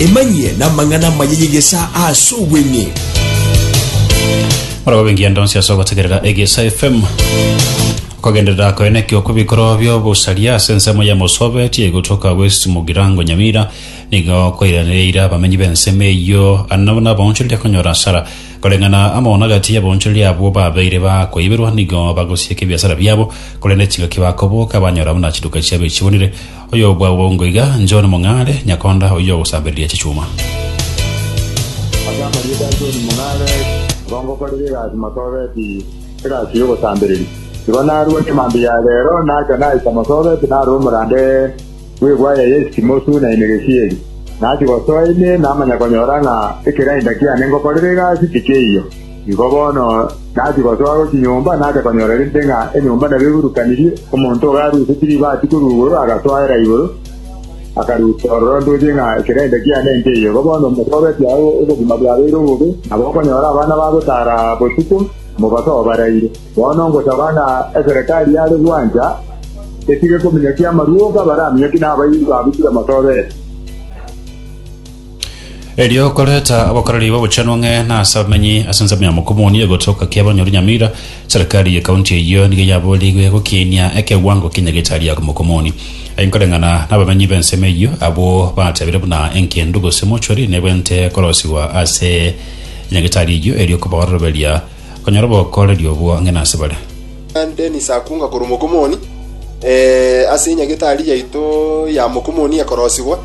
Emanyie n'amang'ana amaya y'egesaa ase obweng'e. Morobe ngiya ndonsi ase ogotegerera egesa fm okogenderera koene kio kobikoro bio busaria ase ensemo ya mosobe tie gotoka west mugirango nyamira nigo koiranereira abamenyi b'ensemo eyo anabo nabonchorire konyora asara koreng'ana amo nagati y'abonchorire abwo babeire bakoiberwa nigo bagosieka ebiasara biabo korende chingaki bakoboka banyora buna chiduka chiabo echibonire Oyobwabongo iga, John Mong'are, nyakonda oyio ogosambereria chichuma. Ase amarieta a John Mong'are, nigo ngokorera egasi Masoobeti, egasi y'ogosambereria. Igo narua chimambia ya reero nacha naika Masoobeti narora omorande bw'egwaya ya Esitimosu na Enegesieri. Nachia gosoa ime namanya konyora ng'a ekerainda kiane ngokorera egasi tikeiyo. Nigo bono nachia gosoa gochia nyomba, nacha konyora rende ng'a enyomba nabo eburukanirie, omonto ogo arusetie ribaati korwa igoro, agasoera igoro, akaruta ororo ntoche ng'a ekerende kiane nkeiyo. Igo bono omosobetie aye obogima bwabeire obobe, nabo okonyora abana bagotaara botuko, mobaso obaraire. Bono ngosaba ng'a eserekari yare gwancha etige kominyokia amaruoga, baraminyokie nabairi babutire mosobetie. Erio okoreta abakoreri b'obochenu ng'e na ase abamenyi ase ensemo ya Mokomoni egotoka kia abanyori Nyamira, serikali ye kaunti eyio nigo yaboorigwe gokiinia ekewango kia nyagetari ya Mokomoni. Aye nkoreng'ana nabamenyi b'ensemo eyio, abwo batebire buna engendu gose mortuary nebwente korosigwa ase nyagetari eyio erio kobaoroberia Onyare obokooreri obwo ng'ina ase bare. Dennis akunga korwa Mokomoni eh, ase enyagetari yaito ya Mokomoni ekorosigwa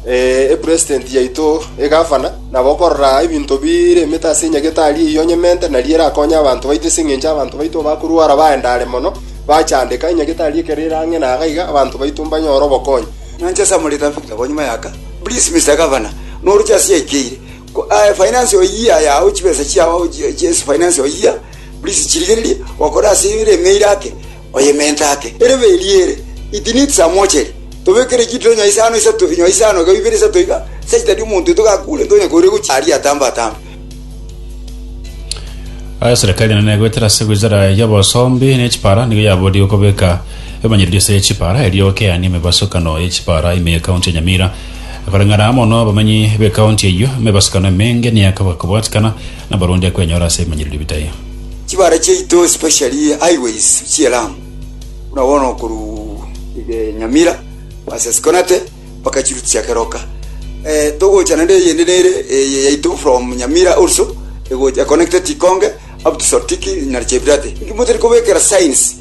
eh, epresident yaito egavana, nabo okorora ebinto bire emete ase enyagetari eyio onyemente, nari erakonye abanto baito ase engencho y'abanto baito bakorwara baendare mono, bachandeka. Enyagetari ekero ere ang'e na iga, abanto baito mbanyore obokonyi. Nanche ase amorita nfika bo nyuma yaka, Please Mister Governor, noroche ase yaikeire. Ko aye finance oyia yao chibesa chiao chiesi finance oyia please chirigererie wakora ase ere emeira ake oye mente ake ere beri ere it needs a mortuary tobekere chituro nywa isano isato nywa isano iga ibere isato iga such that omonto oito gakure ntonye koira gochi aria atambe atambe Aye serikali enene egoetera ase wizara y'obosombi ne chipara nigo yaborie gokobeka emanyererio ase chipara erio okeani emebasukano ye chipara ime ye county ya Nyamira Koreng'ana mono abamanyi b'ekaunti eyio, me ebasukano emenge neyakaba kobwatikana nabarundi akwenyora ase ebimanyererio bitai. Chibara chiaito especially highways chie Lamu buna bono korwa iga Nyamira ase Sikonate mpaka chirutia keroka eh, togocha naende eyende nere eye yaito from Nyamira also egocha connected Ikonge up to Sortiki na Chebirate. Inki motari kobekera signs?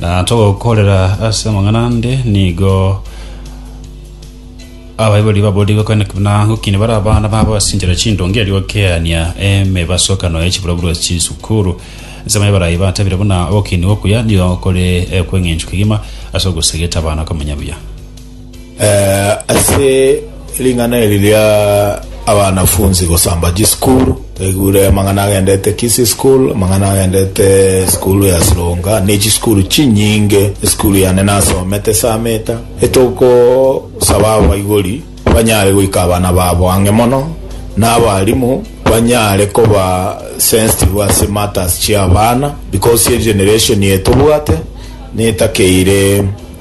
Na togokorera ase amang'ana ande nigo abaibori babori gokana na gokini bara abana babo ase enchera chindonge erio gokeania emebasokano ya chiburoburo ase chisukuru nsemo ebarayi batabire buna ogokini okuya nigo kore ekweng'enchwa kegima ase ogosegeta abana komenya buya Eh, ase ring'ana eri ria abanafunsi gosamba chisukuru taigure amang'ana agendete kisi school amang'ana agendete sukuru ya sironga ne chisukuru chinyinge esukuru yane nasomete sameta etogosaba abaibori banyare goika abana babo ang'e mono na abarimu banyare koba sensitive ase matters chiabana because egeneration etobwate netakeire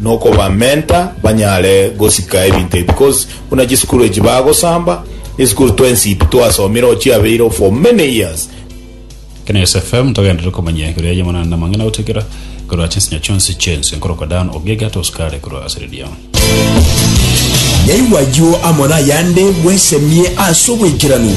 nokobamenta banyare gosika ebinto ebi cause buna chisukuru echi bagosamba esukuru twensi pi twasomire oo chiabeire for many years. Kenyatta FM togenderere komanya igoro ya Yemonana na amang'ana gotigera igoro ase ensinyo chionsi chi'ense nkorokwa Dan Ogiga tosikare korwa ase redio. Naigwa ayio amo nayande bwesemie ase obwekeranu.